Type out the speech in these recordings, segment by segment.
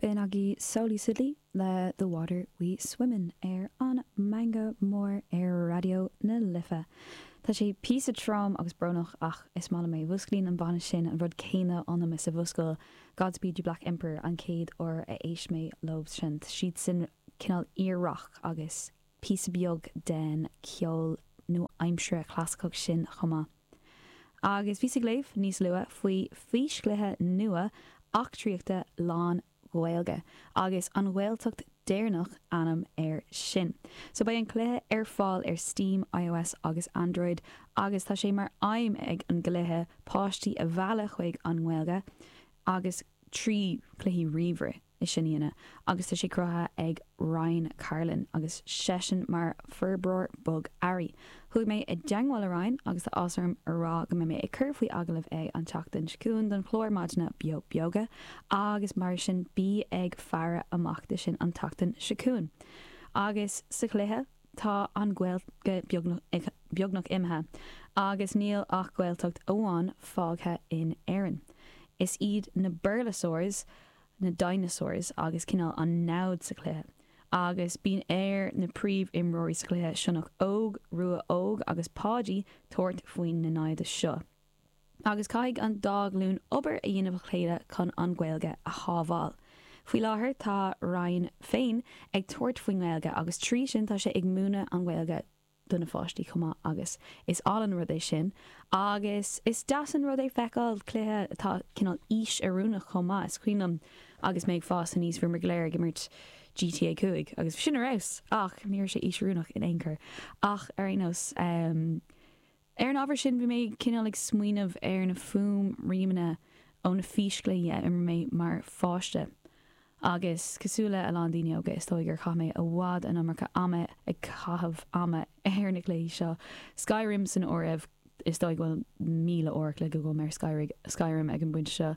B'in aghaidh Sóilí Sidlí le The Water We Swim In ar an Meangadh Mór ar Raidió na Life. Tá sé píosa trom agus brónach ach is maith liom é. Mhúsclaíonn an banna sin an rud céanna ionam is a mhúscail Godspeed You Black Emperor an chéad uair a éist mé leob sin. Siad sin cineál iar-rac agus píosa beag den ceol nua-aimseartha clasaiceach sin chomh maith. Agus bhíos ag léamh níos luath faoi físchluiche nua eachtraíochta lán-Ghaeilge, agus An Ghaeltacht Deireanach ainm air sin. So beidh an cluiche ar fáil ar Steam, iOS agus Android, agus tá sé mar aidhm ag an gcluiche páistí a mhealladh chuig an nGaeilge agus trí chluichí ríomhaire. é sin a dhéanamh agus tá sé cruthaithe ag Ryan Carlin agus seisean mar forbróir bogearraí. Chuaigh mé i dteagmháil le Ryan agus tá áthas orm a rá go mbeidh mé ag cur faoi agallamh é an tseachtain seo chugainn don chlár maidine Beo Beoga agus mar sin bí ag faire amach do sin an tseachtain seo chugainn. Agus sa chluiche tá an Ghaeilge beagnach imithe agus níl ach Gaeltacht amháin fágtha in Éirinn. Is iad na Béarlasaurs. na dinosaurs agus cineál an namhad sa chluiche agus bíonn ar na príomhimreoirí sa chluiche, Sionnach Óg, Rua Óg agus Páidí, tabhairt faoin na naimhde seo. Agus caithfidh an dá ghlúin obair a dhéanamh le chéile chun an Ghaeilge a shábháil. Faoi láthair tá Ryan féin ag tabhairt faoin nGaeilge agus trí sin tá sé ag múineadh an Ghaeilge do na pháistí chomh maith agus is álainn rud é sin agus is deas an rud é feiceáil cluiche atá cineál aois oiriúnach chomh maith. Is cuimhin liom agus mé ag fás aníos bhíomar go léir ag imirt GTA 5 agus bhí sin ar fheabhas ach ní raibh sé aois oiriúnach in aon chor ach ar aon nós Ar an ábhar sin bhí mé cineál ag smaoineamh ar na fuaimriamanna ó na físchluichí a imir mé mar pháiste agus cosúil le a lán daoine óga is dóigh gur chaith mé i bhfad an iomarca ama ag caitheamh ama ar na cluichí seo, Skyrim san áireamh, is dóigh go bhfuil míle uair a chloig agam ar Skyrim ag an bpointe seo.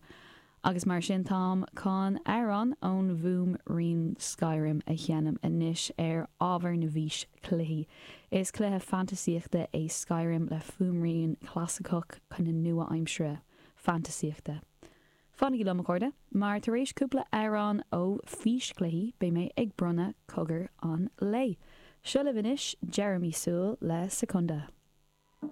Agus mar sin táim chun amhrán ón bhfuaimrian Skyrim a sheinm anois ar ábhar na bhfís-chluichí. Is cluiche fantaisíochta é Skyrim le fuaimrian clasaiceach cineál nua-aimseartha fantaisíochta. Fanaigí liom, a chairde, mar tar éis cúpla amhrán ó fís-chluichí beidh mé ag bronnadh cogar an lae. Seo libh anois Jeremy Soule le Secunda.